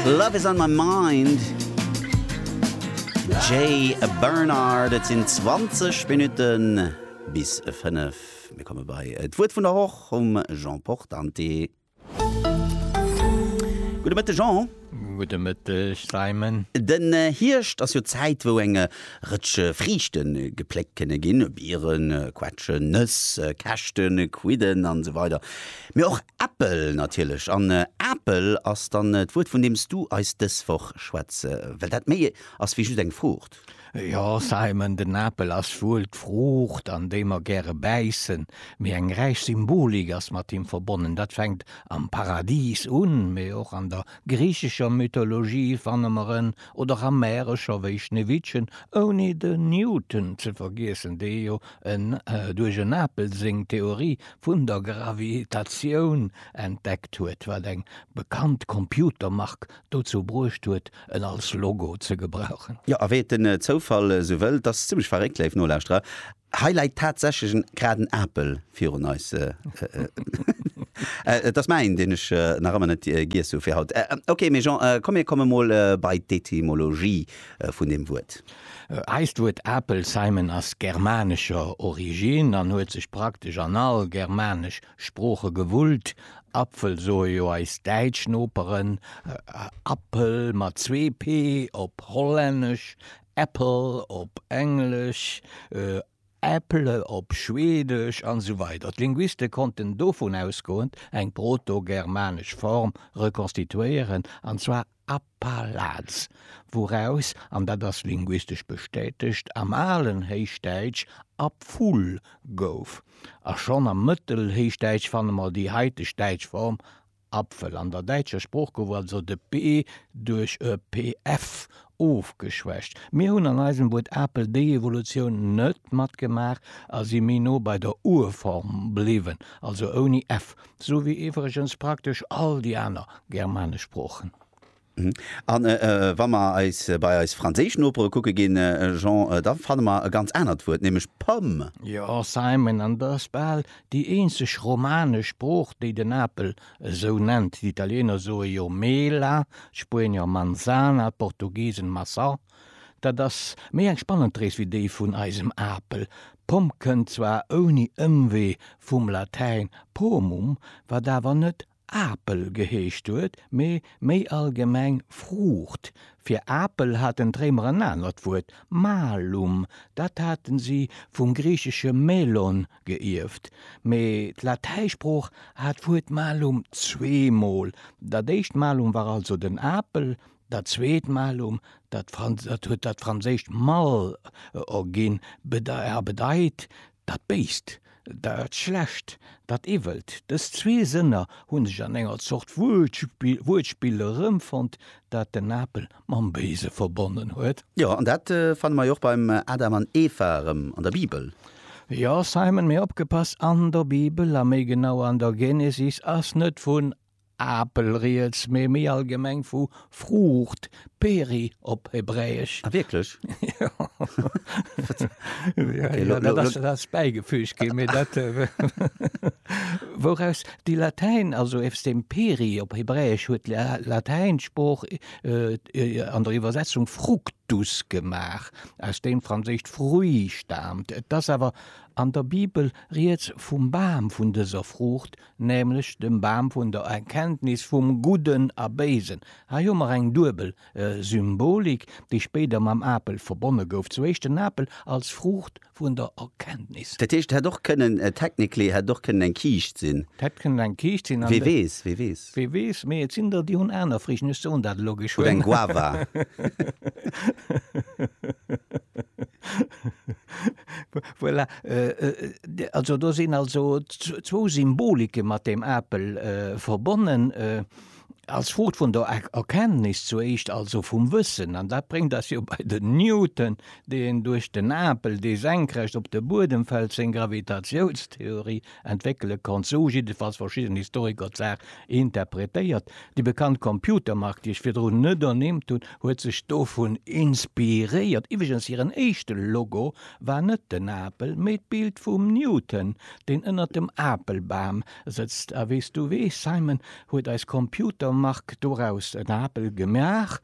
Love is on my mind, Jay Bernard. Et sinn 20 Minutten bis 5. Mir komme bei d'Wuert vun der Woch um Jean Portante. Gudde Mëtteg, Jean. Gudde Mëtteg, Simon. Den Hierscht ass jo d'Zäit, wou eng Rëtsch Friichte gepléckt kënne ginn, Bieren, Quetschen, Nëss, Käschten, Quidden an esou weider. Mee och Äppel natierlech. An Apel ass dann d'Wuert, vun deems du eis dës Woch schwätze well. Dat méi ass wéi just eng Fruucht. Jo, Simon, den Apel ass wuel d'Fruucht, an déi mer gäre bäissen. Mee eng räich Symbolik ass mat him verbonnen. Dat fänkt am Paradis un, mee och an der griichescher Mythologie fanne mer en, oder am Mäerescher wéi Schneewittchen, ouni de Newton ze vergiessen, dee jo en duerch en Apel seng Theorie vun der Gravitatioun entdeckt huet, wat eng bekannt Computermark dozou bruecht huet, en als Logo ze gebrauchen. Jo, a wéi et den Zoufall esou wëll, et ass zimlech verréckt, léif Nolauschterer, hei läit tatsächlech en graden Apel virun eis. Et ass mäin, deen ech nach ëmmer net giess hu fir haut. Ok, mee Jean, komm mir komme mol bei d'Etymologie vun deem Wuert. Eist Wuert Apelsheimen ass germanescher Originn an huet sech praktesch an all germanesch Sprooche gewullt. Apfel soe jo eis däitsch Noperen, Apel mat zwee p op Hollännesch, Apple op Englesch, Äpple op Schwedesch an esou weider D'Linguiste konnten dovun ausgoend eng protogermanesch Form rekonstituéieren, an zwar Appalaz, wouraus, an dat ass linguistesch bestätegt, am alen Héichdäitsch Apful gouf. A schonn am Mëttelhéichdäitsch fanne mer déi haiteg däitsch Form Apfel. An der däitscher Sprooch gouf also de p duerch e pf ofgeschwächt. Mir hunn an eisem Wuert Apel déi Evolutioun net matgemaach a si méi no bei der Urform bliwwen, also ouni f. Sou wéi iwwregens praktesch all déi aner germanesch Sproochen. A wa mer eis bei eis franséisch Nopere kucke ginn, Jean, da fanne mer e ganz anert Wuert, nämlech pomme. Jo, Simon, an dat ass bal déi eenzeg romanesch Sprooch, déi den Apel esou nennt. D'Italiener soe jo mela, d'Spuenier manzana, d'Portugisen maçã, Dat ass méi eng spannend Rees wéi déi vun eisem Apel. Pomm kënnt zwar ouni Ëmwee vum Latäin pomum, wat awer net Apel geheescht huet, mee méi allgemeng Fruucht. Fir Apel haten d'Réimer en anert Wuert, malum, dat hate si vum griichesche melon geierft. Mee d'Latäisprooch hat d'Wuert malum zweemol, dat éischt malum war also den Apel, Dat zweet malum, dat huet dat franséischt mal ogin, a bedeit dat Béist, dat Schlecht, dat Iwwelt. Dës zwee Sënner hu sech an enger Zort Wuertspill erëmfonnt, dat den Apel mam Béise verbonnen huet. Jo, an dat fanne mer jo och beim Adam an Eva erëm an der Bibel. Jo, Simon, mee opgepasst, an der Bibel, a méi genau an der Genesis, ass net vun Apel riets, mee méi allgemeng vu Fruucht, peri op Hebräesch. Ah wierklech? Jo. Okay, lo. Dat ass, dat ass bäigefüügt ginn, mee dat, wouraus déi Latäin, also eefs dem peri op Hebräesch, huet d'Latäin Sprooch an der Iwwersetzung fructus gemaach, aus deem d'Franséischt fruit staamt. Et ass awer an der Bibel riets vum Bam vun dëser Fruucht, nämlech dem Bam vun der Erkenntnis vum Gudden a Béisen. Hei hu mer eng duebel Symbolik, déi spéider mam Apel verbonne gouf, zu Éischt den Apel als Fruucht vun der Erkenntnis. Dat heescht, et hätt och kënnen, technically hätt et och kënnen eng Kiischt sinn. Et hätt kënnen eng Kiischt sinn, an. Wee weess, wee weess. Wee weess, mee et sinn der, déi hunn aner Friichten, ech soen dat elo geschwënn. Oder eng Guava. Voilà, also do sinn also zwou Symbolike mat deem Apel verbonnen, als Fruucht vun der Erkenntnis zur éischt, also vum Wëssen. An dat bréngt eis jo bei den Newton, deen duerch den Apel, dee senkrecht op de Buedem fält, seng Gravitatiounstheorie entwéckele konnt, sou hu jiddefalls verschidden Historiker d'Saach interpretéiert. Déi bekannt Computermark, déi ech virdrun net ernimmt hunn, huet sech dovun inspiréiert. Iwwregens hiren éischte Logo war net den Apel, mee d'Bild vum Newton, deen ënnert dem Apelbam sëtzt. A wéi s du weess, Simon, huet eis Computermark doraus en Apel gemaach,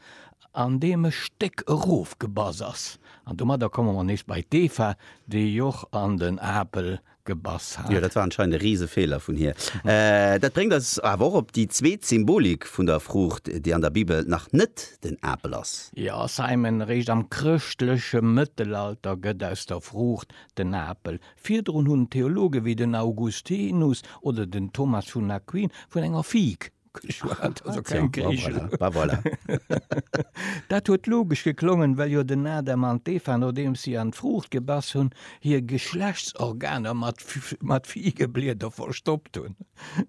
an deem e Stéck erofgebass ass. An domadder komme mer nees bei d'Eva, déi och an den Apel gebass hat. Jo, dat war anscheinend e riise Feeler vun hir. Dat bréngt eis awer och op déi zweet Symbolik vun der Fruucht, déi an der Bibel nach net den Apel ass. Jo, Simon, eréischt am chrëschtleche Mëttelalter gëtt aus der Fruucht den Apel. Virdrun hunn Theologe wéi den Augustinus oder den Thomas vun Aquin vun enger Fig Dat huet logesch geklongen, well jo den Adam an d'Eva, nodeems si an d'Fruucht gebass hunn, hir Geschlechtsorganer mat Figeblieder verstoppt hunn.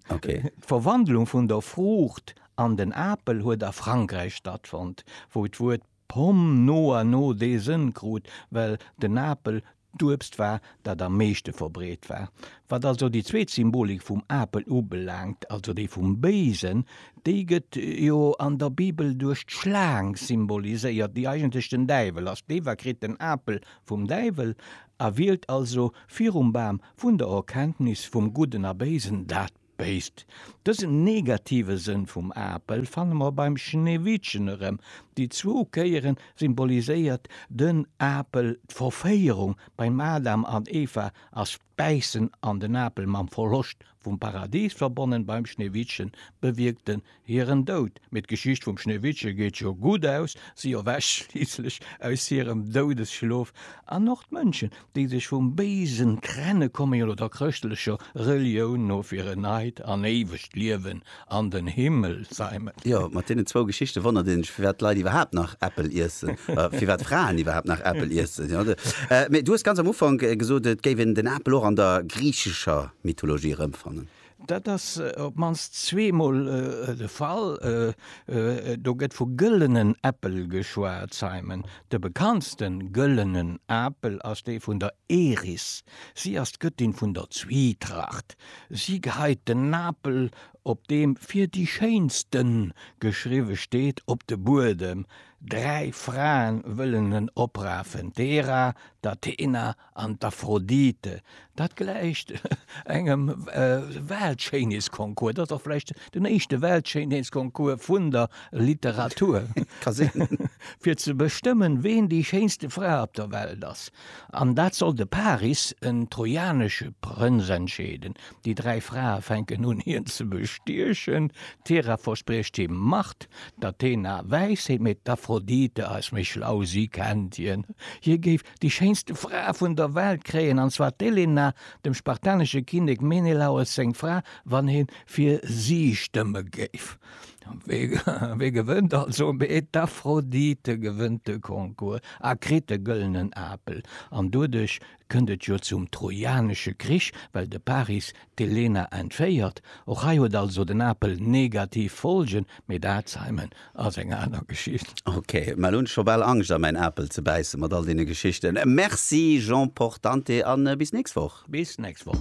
D'Verwandlung vun der Fruucht an den Apel huet a Frankräich stattfonnt, wou d'Wuert pomme no a no dee Sënn krut, well den Apel D'Uebst war dat am meeschte verbreet war. Wat also déi zweet Symbolik vum Apel ubelaangt, also déi vum Béisen, déi gëtt jo an der Bibel duerch d'Schlaang symboliséiert, déi eigentlech den Däiwel ass. D'Eva kritt den Apel vum Däiwel a wielt also virum Bam vun der Erkenntnis vum Gudden a Béisen dat. Béisst. Dësen negative Sënn vum Apel fanne mer beim Schneewittchen erëm. Déi zwou Kéiere symboliséiert den Apel d'Verféierung beim Adam an Eva ass d'Bäissen an den Apel mam Verloscht vum Paradis verbonnen, beim Schneewittchen bewierkt den Hiren Doud, mee d'Geschicht vum Schneewittche geet jo gutt aus, si erwächt schliisslech aus hirem Doudesschlof, an och d'Mënschen, déi sech vum Béisen trenne komme jo lo der chrëschtlecher Relioun no fir en neit an éiwegt Liewen an den Himmel z'eimen. Jo, mat deenen zwou Geschichte wonnert ee sech, firwat d'Leit iwwerhaapt nach Äppel iessen, firwat Fraen iwwerhaapt nach Äppel iessen. Mee du hues ganz am Ufank gesot, et géif een den Apel och an der griichescher Mythologie erëmfannen. Dat ass op d'mannst zweemol de Fall. Do gëtt vu gëllenen Äppel geschwat, Simon. De bekanntste gëllenen Apel ass dee vun der Eris. Si ass d'Gëttin vun der Zwietracht. Si geheit den Apel, op deem fir déi schéinste geschriwwe steet, op de Buedem. Dräi Frae wëllen en oprafen, d'Hera, d'Athena An d'Aphrodite, dat gläicht engem Weltschéinheetsconcours. Et ass och vläicht den éischte Weltschéinheetsconcours vun der Literatur. Ka sinn. Fir ze bestëmmen, ween déi schéinste Fra op der Welt ass. An dat soll de Paris, en trojanesche Prënz, entscheeden. Déi dräi Frae fänken un, hien ze bestiechen. D'Hera verspriecht him Macht, d'Athena Wäisheet, mee d'Aphrodite ass méi schlau, si kennt hien. Hie géif Déi schéinste Fra vun der Welt kréien, an zwar d'Elena, dem spartanesche Kinnek Menelaos seng Fra, wann ee fir si stëmme géif. Wee gewënnt also? Mee d'Aphrodite gewënnt de Concours a kritt de gëllenen Apel. An doduerch kënnt et jo zum Trojanesche Krich, well de Paris D'Elena entféiert. Och hei huet also den Apel negativ Folgen, mee d'Alzheimen ass eng aner Geschicht. Ok, mä elo hunn ech scho bal Angscht a mäin Apel ze bäissen mat all deene Geschichten. Merci Jean Portante an bis nächst Woch. Bis nächst Woch.